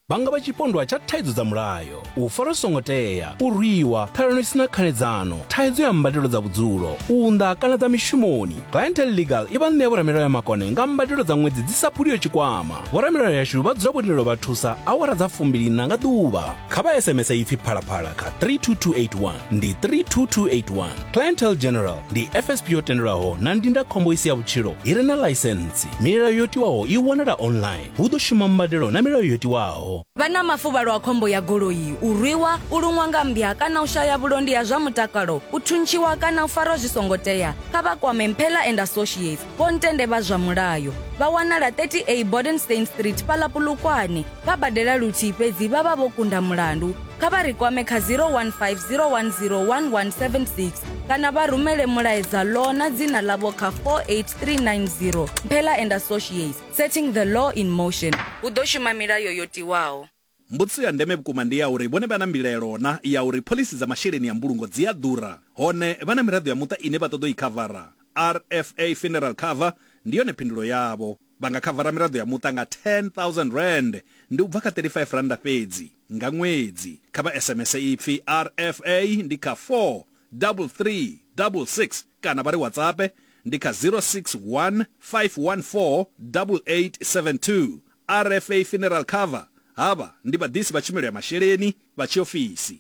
vha nga vha tshipondwa tsha thaidzo dza mulayo, u farwa zwi songo tea, u rwiwa, ṱhalano i si na khanedzano, thaidzo ya mbadelo dza vhudzulo, u unḓa kana dza mishumoni. Clientele Legal i vha ṋea vhoramilayo ya makone nga mbadelo dza ṅwedzi dzi sa phuliho tshikwama. Vhoramilayo yashu vha dzula vho tendelwa u vha thusa awara dza fumbili-nṋa nga ḓuvha. Kha vha SMS ipfi Phalaphala kha 32281, ndi 32281. Clientele General, ndi fsp yo tendelwaho na ndindakhombo i si ya vhutshilo i re na ḽaisentsi milayo yo tiwaho i wanala online hu ḓo shuma mbadelo na milayo yo tiwaho Vha na mafuvhalo a khombo ya goloi, u rwiwa, u luṅwa nga mmbya kana u shaya vhulondi ha zwa mutakalo, u thuntshiwa kana u farwa zwi songo tea, kha vha kwame Mphela and Associates. Vho Ntende vha zwa mulayo vha wanala 30A Bodenstein Street fhaḽa Polokwane. Vha badela luthihi fhedzi vha vha vho kunda mulandu. Kha vha ri kwame kha 015 010 1176 kana vha rumele mulaedza law na dzina ḽavho kha 48390. Mphela and Associates, setting the law in motion. Hu ḓo shuma milayo yo tiwaho. Mbudziso ya ndeme vhukuma ndi ya uri vhone vha na mbilaelo na ya uri phoḽisi dza masheleni ya mbulungo dzi a ḓura, hone vha na miraḓo ya muṱa ine vha ṱoḓa u i khavara. RFA Funeral Cover ndi yone phindulo yavho. Vha nga khavara miraḓo ya muṱa nga R10,000, ndi u bva kha R35 fhedzi, nga ṅwedzi. Kha vha SMS ipfi RFA ndi kha 43366 kana vha ri WhatsAppe ndi kha 0615148872. RFA Funeral Cover, Havha ndi vhaḓisi vha tshumelo ya masheleni vha tshiofisi.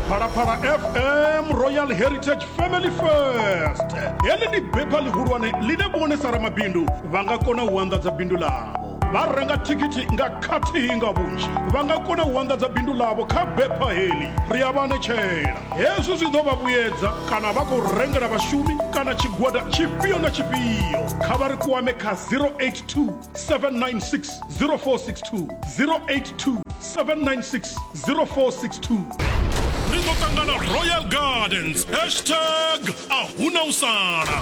Phalaphala FM Royal Heritage Family First. Heḽi ndi bepha ḽihulwane ḽine vhone sa ramabindu vha nga kona u anḓadza bindu ḽavho. Vha renga thikhithi nga khathihi nga vhunzhi vha nga kona u anḓadza bindu ḽavho kha bepha heḽi. Ri a vha anetshela. Hezwi zwi ḓo vha vhuyedza kana vha khou rengela vhashumi kana tshigwada tshifhio na tshifhio. Kha vha ri kwame kha 082 796 0462, 082 796 0462. Ri ḓo ṱangana Royal Gardens, hashtag a hu na u sala.